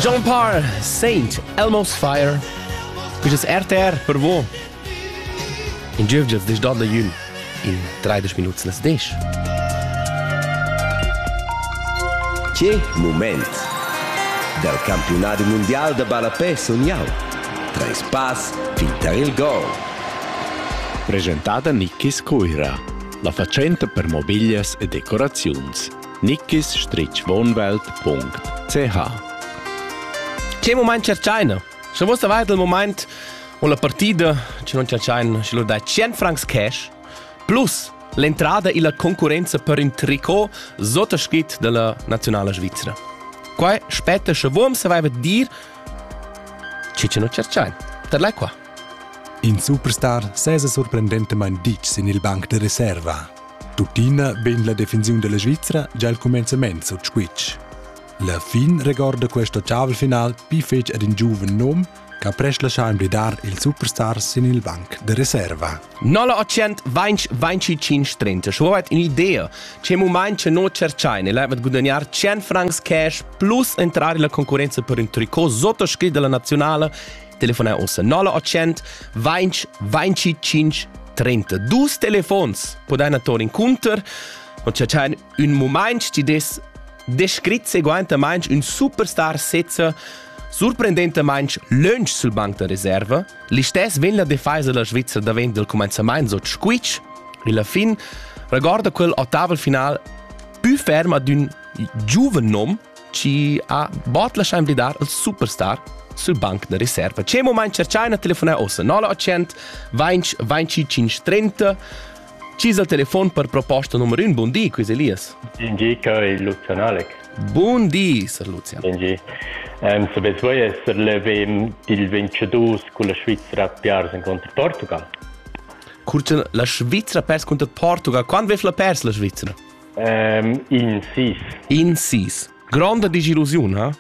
John Parr, Saint, Elmo's Fire. Quistas RTR per vo. In giövgias des donda jün in 30 minuts nas des. Che moment! Dal campionat mundial da ballapè sun jau. Treis pass fin tar il gol. Presentada Nicky Scuira, la fatschenta per mobiglias e decoraziuns. nickis-wohnwelt.ch Che moment cercaina? Sche vos avais il moment o la partida che non cercaina, sche lur dai 100 francs cash plus l'entrada illa concurrenza per ün tricot sottoschit della nazionale Svizzera. Qua spetta sche vorm saveva dir che che non cercain. Per lei qua. In superstar sesa sorprendentamain ditg sin il banc de reserva. Tuttina vegn la defensiun della Svizra già il cumenzament sut squitsch. La fin regorda questo ottavel final pli fetg ad in giuven nom che ha prest lascià emblidar il superstar sin il banc de reserva. 925 schuet un'idea che moment che non cercai nel avet gudagnare 100 francs cash plus entrare la concorrenza per un tricot sotto scritt della nazionale telefonar on 0800 20 25 32 telefons podai torn inconter und c'è un moment ti des descrit seguentamente un superstar sezza Surprendentemente lunch sul banc da riserva, l'istes vegn la defesa della Svizzera davent del commenzament so squitsch, e la fin regorda quel ottaval final più ferm ad un giuven nom ci ha bot lascià invlidar il superstar sul banc da riserva. C'è moment che China telefona ossa 0800 20 25 30 Ci il telefon per proposta numero 1. Buon dì, Chris Elias. Buon dì, Kai Lucian Alec. Buon dì, Sir Lucian. Buon dì. Um, Sapeți voi essere l'evem dil 22 con la Svizzera Piars incontro Portugal? Curcen la Svizzera pers contra Portugal. Quando vef la pers la Svizzera? In sis. In sis. Gronda disillusiun, ha?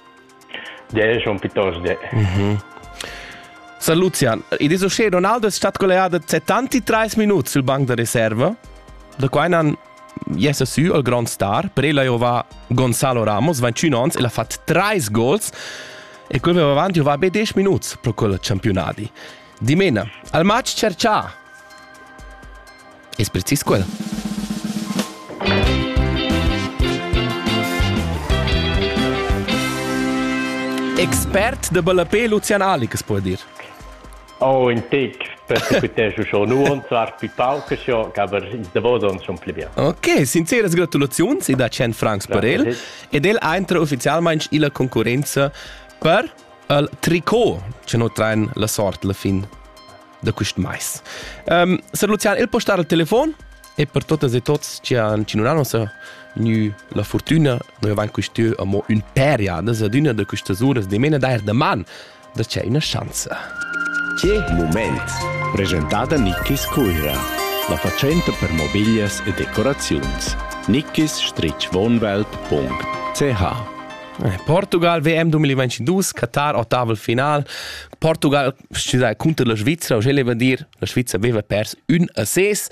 De, schon piuttosto de. Mhm. San Lucian, ed es uschè Ronaldo è stat collegato 73 minuti sul banc da riserva, da quai nan jesse su al grand star, per ella io va Gonzalo Ramos, 21 ans, e l'ha fatto 3 gols, e quel va avanti va be 10 minuti pro quel campionati. Dimena, al match cercià! Es precis quel? Expert da ballapé Lucian Alikas po dir. Oh, in tic, persequitesco schon nuon, zwar più pauc, schon, aber in Davos schon pli bien. Ok, sinceras gratulaziuns e da 100 francs per el. Ed el entra ufficialmente illa concorrenza per il tricot, che no traen la sort la fin. da quist mais. Um, Sir Lucian, il può star al telefon? E per totas e tots che han cinunà nossa gnü la fortuna, noi avant quist'ö amo ün per jadas ad üna da questas uras dimena dair da man da c'è una chance. Che moment! Presentata Nickis Cuira, la facenta per mobiglias e decoraziuns. nickis-wohnwelt.ch Eh, Portugal WM 2022, Katar, Ottaval final. Portugal cunter la Svizzera, uschè leva dir, la Svizzera aveva pers ün a ses,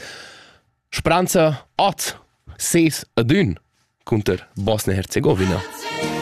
Spranza at ses ad ün cunter Bosnia-Herzegowina.